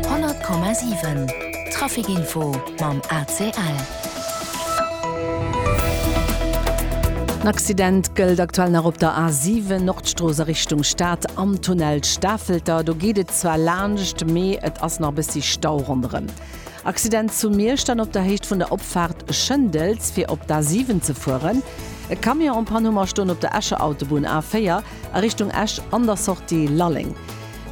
100,7 Trafic Info mam ACL. En Accident gëllt aktuell nach op der A7 Nordstrooss a Richtung Stad am Tunnel Stafelter. Do geet et zwar laanscht, mee et ass nach e bëssi Stau ronderëm. Accident zu Miersch dann op der Héicht vun der Opfaart Schëndels, fir op d'A7 ze fueren. E Camion en panne hu mer stoen op der Escher Autobunn, A4, a Richtung Esch an der Sortie Lalleng.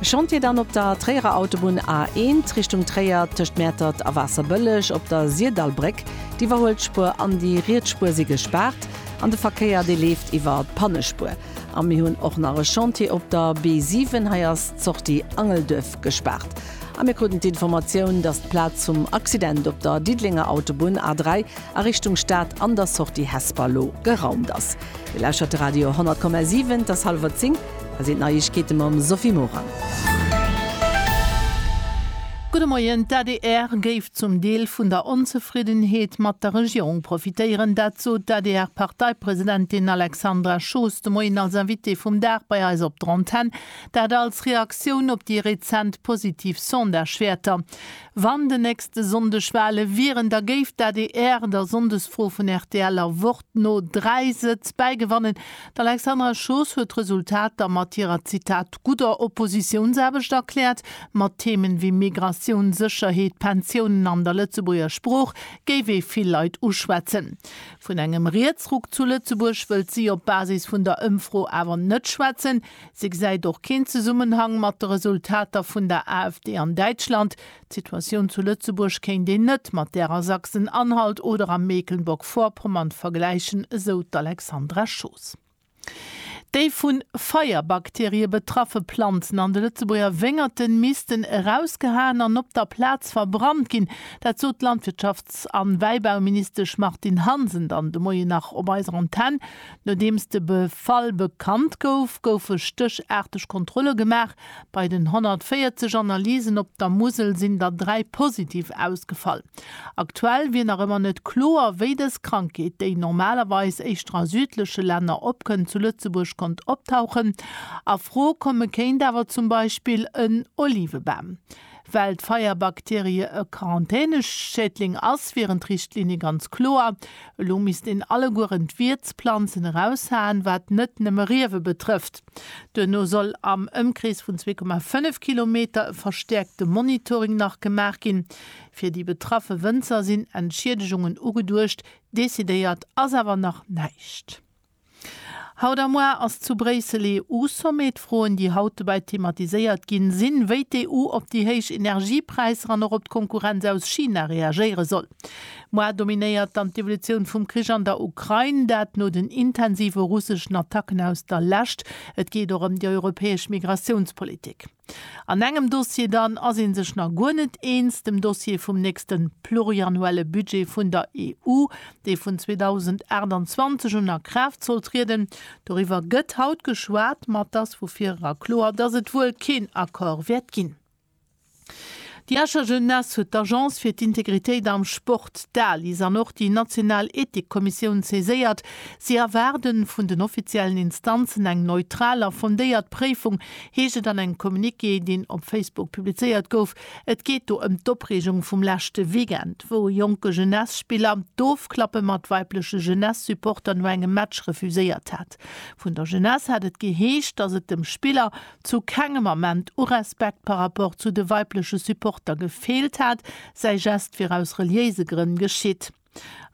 E Chantier dann op der Tréierer Autobunn A1 Richtung Tréier, tëscht Mäertert a Waasserbëlleg op der Sirdallbréck. D'Iwwerhuelsspuer an déi riets Spuer si gespaart an de Verkéier, dee leeft iwwer d'Pannespuer. A mir hunn och nach e Chantier op der B7, hei ass d'Sortie Angelduerf gespaart. A mir kruten d'Informatioun, dass d'Plaz vum Accident op der Diddelenger Autobunn A3, a Richtung Stad an der Sortie Hesper lo geraumt ass. Dir lauschert de Radio 10,7, et ass hallwer 10, hei sinn d'Neiegkeete mam Sophie Morang. Gudde Moien, D'ADR géif zum Deel vun der Onzefriddenheet mat der Regierung profitéieren. Dat sot d'ADR-Parteipresidentin Alexandra Schoos de Moien als Invitée vum Dag bei eis op der Antenn. Dat als Reaktioun op déi rezent positiv Sondagewäerter. Wann den nächste Sonndeg Wale wieren, da géif d'ADR der Sonndesfro vun rtl a Wort no dräi Sëtz bäigewannen. D'Alexandra Schoos huet d'Resultater mat hirer, Zitat, gudder Oppositiounsaarbecht erkläert. Mat Themen wéi Migratioun, Sécherheet, Pensiounen an der Lëtzebuerger Sprooch géif ee vill Leit uschwätzen. Vun engem Rietsruck zu Lëtzebuerg wëllt si op Basis vun der Ëmfro awer net schwätzen. Se gesäit och keen Zesummenhang mat de Resultater vun der AfD an Däitschland. D'Situatioun zu Lëtzebuerg kéint een net mat där a Sachsen-Anhalt oder a Mecklenburg-Vorpommern vergläichen, esou d'Alexandra Schoos. Déi vu Feierbakterie betraffe Planzen an de Lëtzebuerger Wéngerte missten erausgehaen an op der Plaz verbrannt ginn. Dat sot d'Landwirtschafts an Wäibauministesch Martine Hansen dann de Moien nach op eiser Antenn. Nodeems de Befall bekannt gouf, goufe stéchaarteg Kontrolle gemaach. Bei den 140 Analysen op der Musel sinn der dräi positiv ausgefall. Aktuell wier nach ëmmer net kloer, wéi dës Krankheet, déi normalerweis éischter a südleche Länner opkënnt, zu Lëtzebuerg konnt optauchen. A Fro komme kéint awer zum Beispill en Olivebam. Well d'Feierbakterie e Quarantäneschädling ass, wieren d'Richtlinie ganz kloer. Elo misst een allegueren d'Wiertsplanzen eraushaen, wat net nëmme Riewe betrëfft. Duerno soll am Ëmkrees vun zwee Komma fënnef Kilometer e verstäerkte Monitoring nach gemaach ginn. Fir déi betraffe Wënzer sinn Entschiedegungen ugeduecht, decidéiert ass awer nach näischt. Haut a muar ass zu Bréissel EU-Sommet. D'Froen, déi haut dobäi thematiséiert ginn, sinn, wéi d'EU op déi héich Energiepräisser an och op d'Konkurrenz aus China reagéiere soll. Muar dominéiert dann d'Evolutioun vum Krich an der Ukrain, dat no den intensive russeschen Attacken aus der Lescht. Et geet och ëm déi europäesch Migratiounspolitik. An engem Dossier dann ass ee sech nach guer net eens, dem Dossier vum nächste pluriannuelle Budget vun der EU, dee vun 2028 un a Kraaft soll trieden. Doriwwer gëtt haut geschwat, ma et ass vu vir era kloer, dass et wuel keen Accord wäert ginn. Déi Escher Jeunesse huet d'Agence fir d'Integritéit am Sport, d'ALIS, an och déi national Ethikkommissioun saiséiert. Si erwaarde vun den offiziellen Instanzen eng neutral a fondéiert Préifung, heescht et an engem Communiqué, deen op Facebook publizéiert gouf. Et geet do ëm d'Opreegung vum leschte Weekend, wou e jonke Jeunesse-Spiller d'Ofklappe mat weibleche Jeunesse-Supporter no engem Match refuséiert hat. Vun der Jeunesse hat et geheescht, datt et dem Spiller, zu kengem Ament u Respekt par rapport zu de weibleche Supporter gefeelt hat, säi Geste wier aus reliéise Grënn geschitt.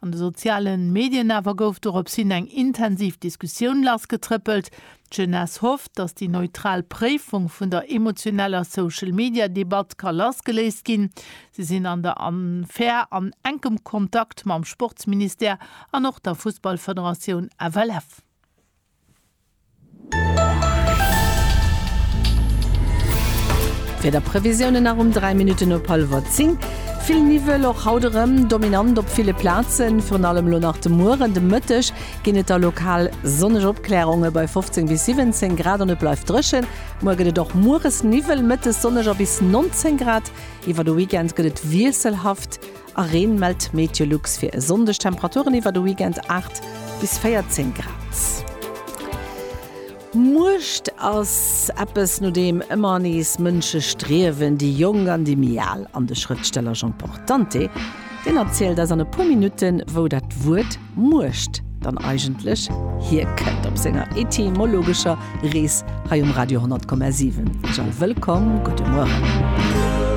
An de soziale Medien awer gouf dorops hin eng intensiv Diskussioun lassgetrëppelt. D'Jeunesse hofft, datt déi neutral Préifung vun der emotioneller Social-Media-Debatt ka lassgeléist ginn. Si sinn an der Affär an enkem Kontakt mam Sportsministère an och der Fussballfederatioun FLF. Wiederprevisiounen nach um 3 Minutten op hallwer 10. Vill Niwwel, och haut erëm dominant op ville Plazen. Virun allem elo nach de Mueren, de Mëtteg ginn et da lokal sonneg Opklärunge bei 15 bis 17 Grad an et bleift dréchen. Muer gëtt et och mueres Niwwel, mëttes sonneg a bis 19 Grad. Iwwer de Weekend gëtt et wiesselhaft. A Reen mellt d'MeteoLux fir e Sonndeg. Temperaturen iwwer de Weekend 8 bis 14 Grad. Muecht ass eppes, no deem ëmmer nees Mënsche striewen, déi Jonk an déi méi Al. An de Schrëftsteller Jean Portante, deen erzielt eis an e puer Minutten, wou dat Wuert Muecht dann eigentlech hierkënnt, op senger etymologescher Rees hei um Radio 10,7. Ech all wëllkomm, gudde Mueren.